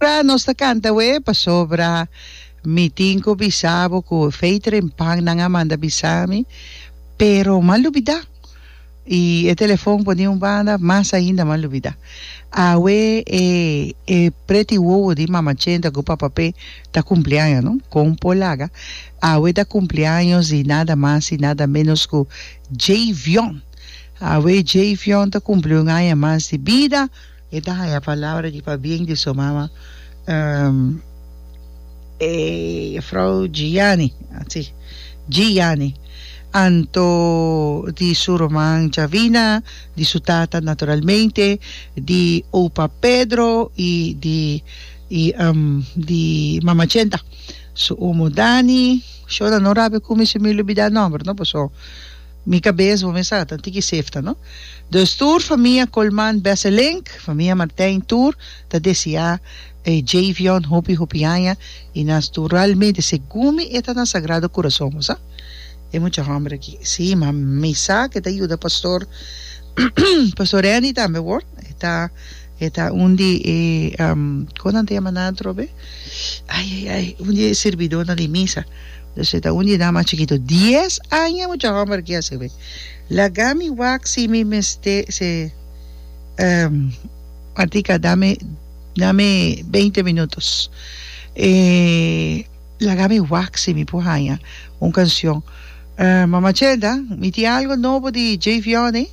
Ora nos ta canta awe pasobra mi tin cu bisabo cu Veteryn Pan nan a manda bisami pero m'ha lubida y e telefon poni un banda mas ainda m'ha lubida awe e e preti wowo di Mama Chenta cu Papa Pe ta cumpleaños no con por laga Awe ta cumpleaños di nada mas y nada menos cu Jayvion. Awe Jayvion ta cumpli un aña mas di bida. E ta haya palabra di pabien di su mama, e juffrouw Giani, si, Giani, anto di su ruman Javina, di su tata naturalmente, di opa Pedro y di mama Chenta. Su omo Dani, shona no rabi cu mi sumi lubida nomber no paso mi cabes bo mi sa tan tiki sefta no. Dus tur famia Colman Besselink, famia Martijn tur ta desia e Javion hopi hopi aña y nos tur realmente segun mi e ta na Sagrado Corazon bo sa e mucha homber aki si ma mi sa ke ta yuda Pastor Pastor Reni tambe wor e ta E ta un di e, kon nan ta yama nan atrobe? Ai, ai, ai, un di e sirbidónan di misa. Pues e ta un di nan mas chikito. Dies aña e mucha hòmber aki a sirbi. Laga mi wak si mi mester, si Martica, dame, dame beinti minutos. E laga mi wak si mi por haña un canción. Mama Chelda, mi tin algo nobo di Jay Vianney.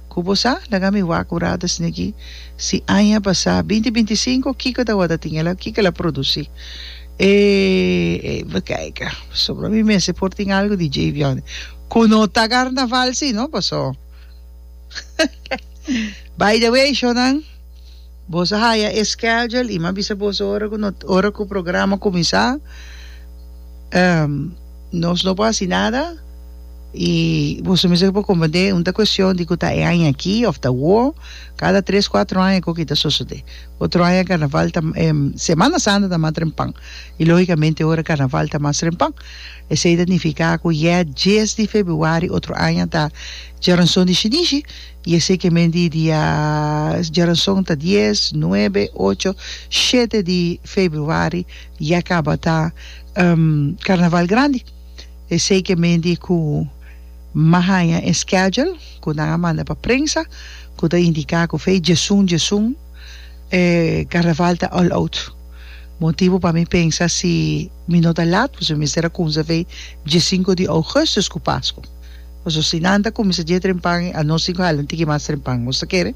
Ku bo sa? Laga mi wak ora ta snigi si aña pasá binti binti i sinku kiko tabata tin el a kiko el a produsí. E bo kaika pasobra mi mester por tin algu di Djei Biòni ku no ta karnaval si no paso by the way shònan. Boso a haya e schedule y mi a bisa boso ora cu no ora cu programa cuminsa ehm nos no por haci nada y boso mesmo por comprende un ta cuestion di cu ta e aña aki of ta awo cada tres cuatro aña cu aki ta sosode otro aña carnaval ta ehm semana santa ta mas trempan y logicamente ora carnaval ta mas trempan esey ta nifica cu yeh dies di februari otro aña ta Djaranson di shinishi I esei ke men di dia djaranson ta dies, nuebe, ocho, shete di februari ya kaba ta Karnaval Grandi. Esei ke men di ku m'a haña e schedule ku nan a manda pa prensa ku ta indiká ku fei djesun djesun e Karnaval ta all out. Motibu pa mi pensa si mi no ta lat pues mi mester a kumsa fei diesinko di ougùstus ku Pasku. Paso si nan ta kuminsá dje trempan i anos tin ku hala un tiki mas trempan, nos ta kere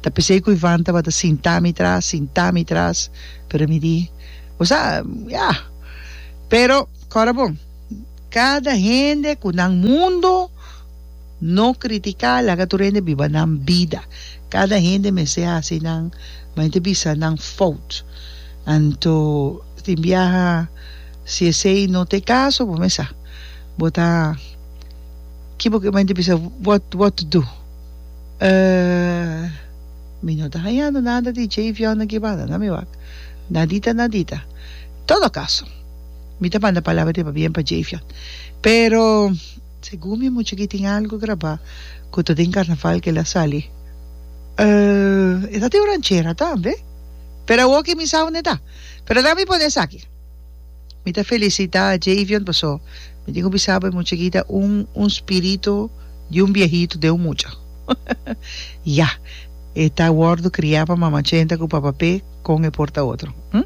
ta p'esei ku Ivan tabata sintá mi tras, sintá mi tras, pero mi di, Bo sa, ya! Pero kòrda bon, kada hende ku nan mundu no kritiká laga tur hende biba nan bida. Kada hende mester hasi nan mente bisa nan fout. Anto tin biaha si esei no t'e kaso bo mester sa. Bo ta ki bo kiba y ta bisa what what to do uh mi no ta hañando nada di dje y fiona kibada na mi wak nadita nadita en todo caso mi ta manda palabra di pa bien pa dje y fion pero segun mi mucha aki tin algo graba cu ta den carnaval que el a sali uh esa tin un ranchera tambe pero awor que mi sa aunde ta pero laga mi pone esaki Mi ta felisitá Javion pasó mi tin ku bisa bo e mucha kita un un spiritu di un biahitu den un mucha. Ya e ta wòrdu kriá pa Mama Chenta ku Papa Pe kon e por ta otro. Hm?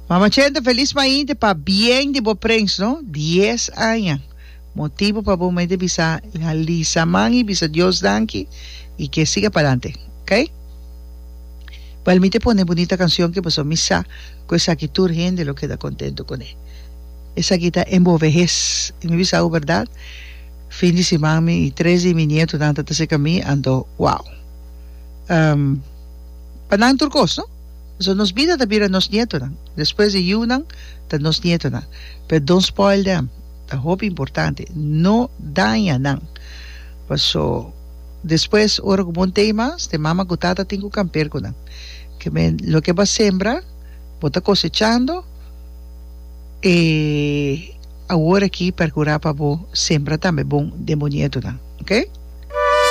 Mama Chenta felis mainte pa bien di bo prens no, dies aña. Motibu pa bo mete bisa i alisa man i bisa Dios danki i ke siga palante. Ok? Bel mi te pone e bunita kansion ke pasó mi sa. Cu esaki tur hende lo keda contento con e. Esaki ta en bo vehes. Y mi bisa awe berdad, fin di siman mi y tres di mi nietonan ta ta cerca mi, anto, wow. Ehm, pa nan tur cos, no? Pasobra nos bida ta bira nos nietonan. Despues di yiunan, ta nos nietonan. Pero don't spoil them. Ta hopi importante, no daña nan. Paso, despues, ora cu bon t'ey mas, t'e mama cu tata tin cu camper cu nan. Ke men, loke bo a sembra, bo ta kosechando, e awor aki perkurá pa bo sembra tambe bon den bo nietunan. Oke?